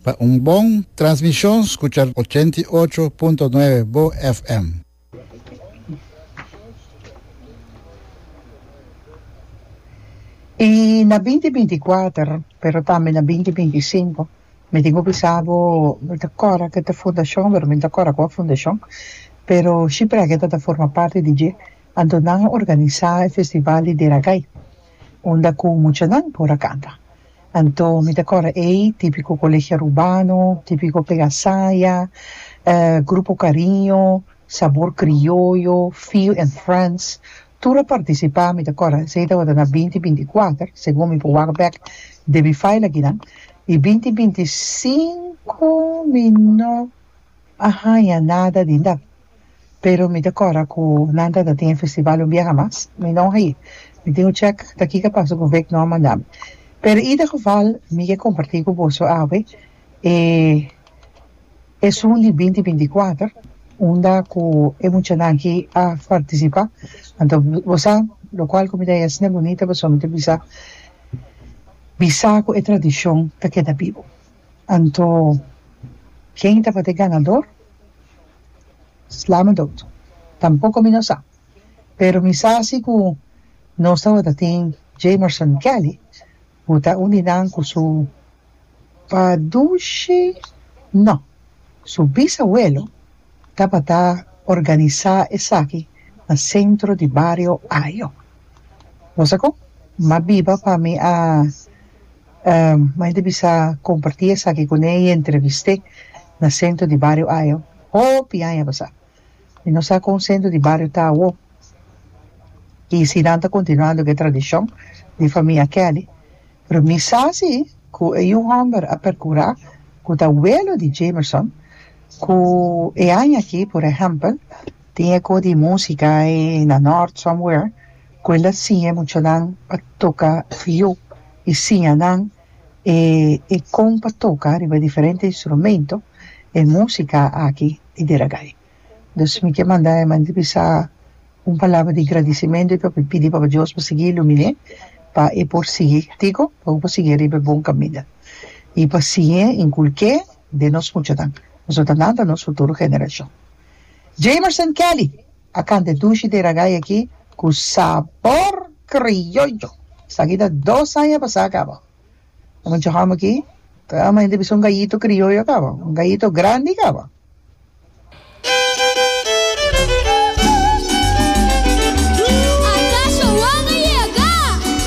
Pa un bon transmishon skucha ochenta i ocho punto nuebe bo FM. I na binti binti kuater, pero tambe na binti binti sinku, mi tin ku bisa bo, mi ta kòrda ku e ta fundashon, pero mi no ta kòrda kua fundashon, pero Shiprèketa ta forma parti di dje, anto nan a organisá e festival di Deragai. unda cu muchanan por a canta. Anto mi ta core ey tipico Colegio Arubano, tipico Pega Saya, Grupo Cariño, Sabor Crioyo, Feel and Friends, tur a participa, mi ta core esey tabata na binti binti cuater, segun mi por wak bek den mi file akinan, y binti binti cinco mi no a haya nada di dat. Pero mi ta kora ku nan ta ta tin e festival un biaha mas. Mi no a i. Mi tin un chèk ta kiko a pasa ku Vic no a manda mi. Pero ida geval mi ke kompartí ku boso awe e esun di binti binti kuater unda ku e muchanan ki a partisipá. Anto bo sa lokual ku mi ta yesna e bunita pasobra mi ta bisa bisa ku e tradishon ta keda bibu. Anto ken tabata e ganador? Slama doctor. Tampoco mi no sa. Pero mi sa si cu nos tabata tin Jamerson Kelly cu ta un di nan cu su padushi, no, su bisabuelo tabata organisa esaki na centro di bario Ayo. Bosa con? Ma biba pa mi a Mike ta bisa comparti esaki cu ne y entreviste na centro di bario Ajo hopi aña pasa y no sa con centro di bario ta awo y si nan ta continuando cu e tradicion di famia Kelly pero mi sa si cu e un homber a percura cu ta welo di Jamerson cu e aña aki por ehempel tin e co di musica na North somewhere cu el a siña e muchanan pa toca fiu y siña nan e e con pa toca riba e diferente instrumento e musica aki y di ragai. Dus mi ke manda e manera di bisa un palabra di gradicimento y pa pidi Papa Dios pa sigui ilumine pa e por sigui tico pa bo por sigui riba e bon caminda y pa siña inculke den nos muchanan pasobra nan ta nos futuro generacion. Jamerson Kelly! A cante dushi de ragay aki cu sabor criollo. Esaki ta dos aña pasa caba. Lo mucho ham aki ta ama hende bisa un gallito criollo caba. Un gallito grandi caba.